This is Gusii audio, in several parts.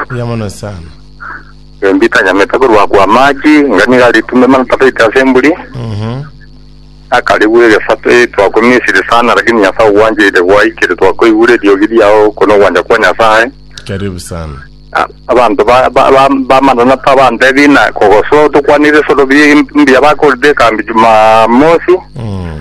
Mbuya mono sana. Embi tanyamete korwa kwa amachi, inga niga ritume mana tabaite ase emburi. Mhm. Akarigwa egesato eh, twakwa Misiri sana, lakini Nyasae ogwancheire gwaikire, twakoigure eriogi riao, oko nogwancha kwa Nyasae. Karibu sana. A- Abanto ba- ba- ba- bamanana tabantebi na kogosoa tokwanire esoro bi- mbuya bakorire ekambi Jumamosi. Mm.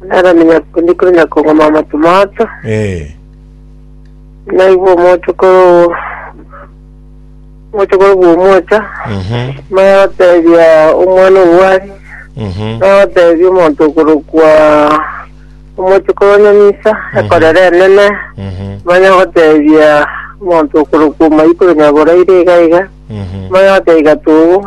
Nere ndikore nyakong'oma amatomaato, Ee. naigwe omochokoro owo omochokoro bw'omocha, Mhm. maya gotebia omwana obwari, Mhm. maya gotebia omonto okorokwa omochokoro onyamisa, ekorera enene, Mhm. maya gotebia omonto okorokwa omoika oronyaboraire iga iga, Mhm. maya gotebia gatogo,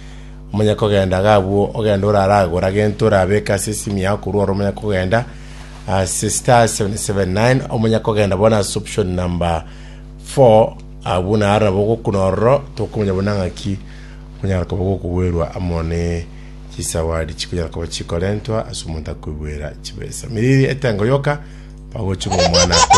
Omonye kogenda iga abwo ogende oraragore agento orabeke ase esimu yao korwa ore omonye kogenda ase star 779 omonye kogenda bono ase option number 4 abwo naro nabo ogokuna ororo tokomanya buna ng'aki onyara koba gokogwerwa amo ne chisawadi chikonyara koba chikorentwa ase omonto akoigwera chibesa miriri etengo yoka bagochunga omwana akorera